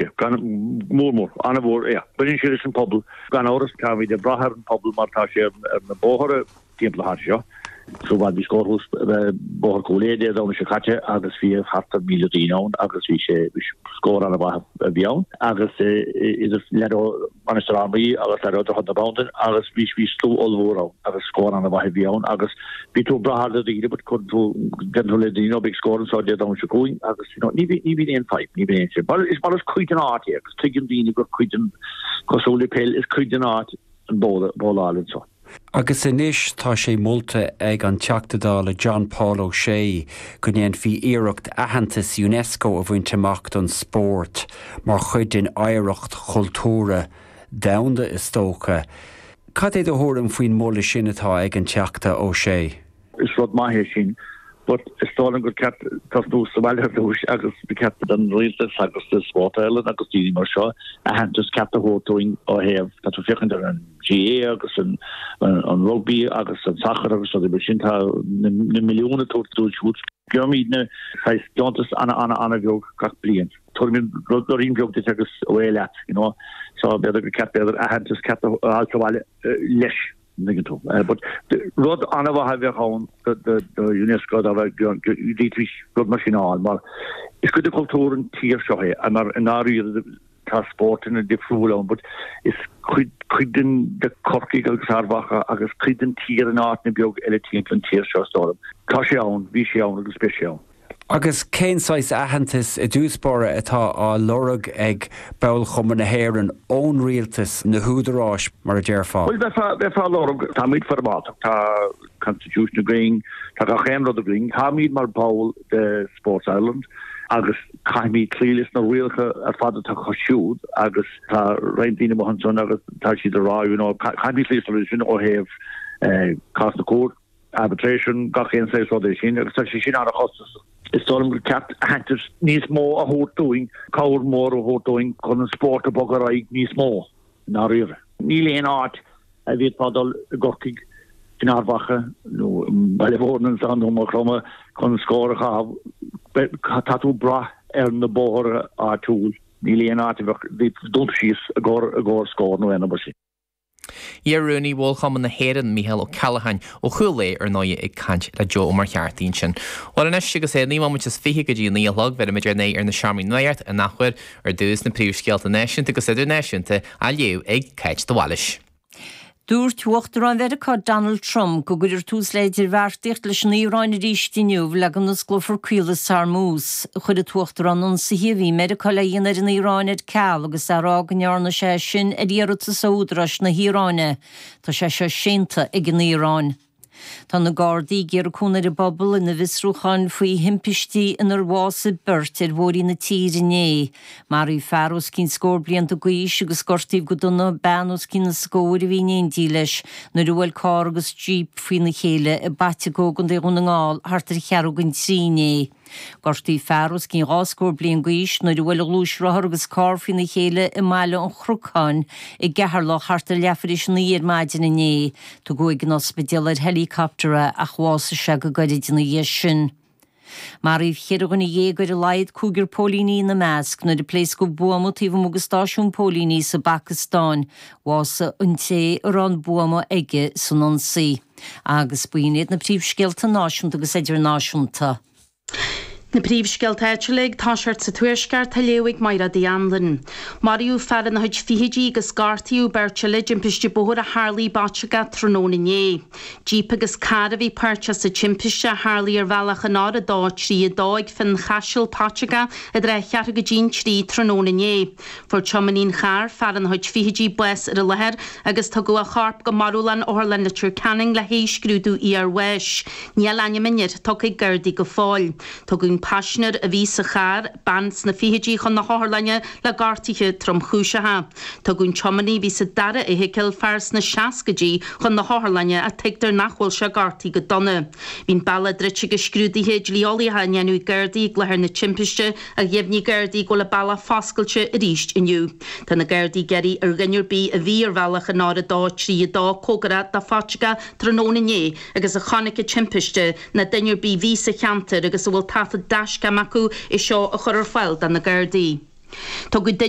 Yeah, gan, mór mór, an-mhór, yeah. Baineann sé leis an bpobal, gan amhras, táimid ag brath ar an bpobal mar tá sé ar na bóithre timpeall thart anseo. Sa bhfad bhí scór thuas Bóthar Chúil Aodha Dé Domhnaigh seo caite agus bhí thart ar 1,000 duine ann agus bhí sé, bhí scór an-mhaith a bhí ann agus idir leaid ó, Mainistir Fhear Maí agus leaid ó Dhroichead na Bandan agus bhí bhí slua ollmhór ann agus scór ana mhaith a bhí ann agus bíonn tú ag brath ar do dhaoine but cuireann tú deireann tú le daoine go mbeidh scór anseo Dé Domhnaigh seo chugainn agus you know ní bhí ní bhíonn aon fadhb ní bhíonn aon sin mar is mar is cuid den áit é agus tuigeann daoine gur cuid den cosúil le peil is cuid den áit an bóla bóla álainn seo. Agus anois tá sé molta ag an Teachta Dála John Paul O'Shea go ndéanfaí iarracht aitheantas Unesco a bhaint amach don spórt mar chuid den oidhreacht chultúrtha domhanda, is dócha. Cad é do thuairim faoin mholadh sin atá ag an Teachta O'Shea? Is rud maith é sin but is dóigh liom gur ceart tosnú sa bhaile ar dtúis agus ba cheart don rialtas agus do Spórt Éireann agus daoine mar seo aitheantas ceart a thabhairt dúinn ó thaobh tá tú ag féachaint ar an GAA agus an rugbaí agus an sacar agus rudaí mar sin tá na milliúin á dtabhairt dóibh siúd. Faighimidne saghas deontas ana ana ana bheag gach bliain. Tabharfaimid roinnt bheag duit agus away leat, you know. So b'fhéidir gur ceart b'fhéidir aitheantas ceart a fháil sa bhaile leis. dtuigeann tú mé. But rud an-mhaith a bheadh ann do Unesco dá bheadh rud mar sin a fháil mar is cuid de chultúr an tír seo é and mar i ndáiríre tá spórtanna difriúla ann but is cuid den de Corcaigh agus Ard Mhacha agus cuid den tír in áiteanna beag eile timpeall an tír seo so tá sé ann, bhí sé ann agus beidh sé ann. Agus cén saghas aitheantas i dtús báire atá á lorg ag Ból-Chumann na hÉireann ón rialtas, na húdaráis mar a déarfá? Bhuel, bheifeá á lorg. Táimid foirmeálta, tá constitution againn, tá gach aon rud againn. Táimid mar bhall de Sport Ireland agus caithfimid cloí leis na rialacha ar fad atá acu siúd agus tá roinnt daoine amuigh ansin agus tá siad ag rá, you know, caithfimid cloí leis na rudaí sin ó thaobh cás na cúirte. Arbitration, gach aon saghas rudaí mar sin agus tá sé sin ana-chostasach. Is dóigh liom gur ceart aitheantas níos mó a thabhairt dúinn, cabhair mhór a thabhairt dúinn chun an spórt a bhogadh ar aghaidh níos mó, i ndáiríre. Níl aon áit a bhféadfá dul i gCorcaigh, in Ard Mhacha nó i mBaile Bhuirne nó i Maigh Chromtha chun scór a chaitheamh. Tá tú ag brath ar na bóithre áitiúil. Níl aon áit a bheadh dúnta síos i gcomhair scór nó aon rud mar sin. Iar-rúnaí Bhól Chumann na hÉireann, Micheál Ó Ceallacháin, ó Chúil Aodha ar ndóigh, ag caint le Joe Ó Muircheartaigh ansin. Bhuel anois agus é naoi mbomaite is fiche go dtí a naoi a chlog, bheirimid ár n-aghaidh ar na seomraí nuachta in athuair. Ar dtús, na príomhscéalta náisiúnta agus idirnáisiúnta, á léamh ag Cáit de Bhailís. Dúirt Uachtarán Mheiriceá Donald Trump go gcuirfear tús le hidirbheartaíocht leis an Iaráin arís inniu le go n-osclófar caolas Hormuz. Chuir an tUachtarán ionsaithe a bhí Meiriceá le dhéanamh ar an Iaráin ar ceal agus é ag rá go ndearna sé sin ar iarratas ó údaráis na hIaráine. Tá sé seo séanta ag an Iaráin. Tá na Gardaí ag iarraidh cúnamh ar an bpobal ina bhfiosrúcháin faoi thimpistí inar bhásaigh beirt ar bhóithre na tíre inné. Maraíodh fear os cionn scór blianta d'aois agus gortaíodh go dona bean os cionn a scóir a bhí in éindí leis nuair a bhuail carr agus jíp faoina chéile i bPaiteagó, i gContae Dhún na nGall, thart ar cheathrú don trí inné. Gortaíodh fear os cionn dhá scór bliain d'aois nuair a bhuail a ghluaisrothar agus carr faoina chéile i mBaile an Chnocáin i gCeatharlach thart ar leath tar éis a naoi ar maidin inné. Tugadh ag an ospidéal ar helicopter é ach bhásaigh sé go gairid ina dhiaidh sin. Maraíodh cheithre dhuine dhéag ar a laghad, cúigear póilíní ina measc, nuair a pléascadh buama taobh amuigh de stáisiún póilíní sa bPacastáin. Bhásaigh an té a raibh an buama aige san ionsaí. Agus b'in iad na príomhscéalta náisiúnta agus idirnáisiúnta. Na príomhscéalta áitiúla ag toiseacht sa Tuaisceart á léamh ag Mairéad Uí Anluain. Maraíodh fear ina chuid fichidí agus gortaíodh beirt eile i dtimpiste bóthair a tharla i bPaiteagó tráthnóna inné. Jíp agus carr a bhí páirteach sa timpiste, a tharla ar bhealach an R232 ag Fionnchaiseal, Paiteagó, ag tarraingt ar cheathrú go dtí an 3 tráthnóna inné. Fuair tiománaí an chairr, fear ina chuid fichidí, bás ar an láthair agus tugadh a chorp go marbhlann Otharlann Leitir Ceanainn le haghaidh scrúdú iarbháis. Níl ainm an fhir tugtha ag Gardaí go fóill. Tugadh an paisnéir a bhí sa charr, bean sna fichidí chun na hotharlainne le gortuithe tromchúiseacha. Tugadh an tiománaí a bhí sa dara fheithicil, fear sna seascaidí, chun na hotharlainne ach tuigtear nach bhfuil sé gortaithe go dona. Bhí an bealach druidte agus scrúduithe dlí-eolaíocha á ndéanamh ag Gardaí ag láthair na timpiste. Ach dheimhnigh Gardaí go bhfuil an bealach foscailte arís inniu. Tá na Gardaí ag iarraidh ar dhuine ar bith a bhí ar bhealach an R232 comhgarach do Phaiteagó tráthnóna inné agus a chonaic an timpiste, nó duine ar bith a bhí sa cheantar agus a bhfuil taifead dashcam acu é seo a chur ar fáil do na Gardaí. Tugadh duine.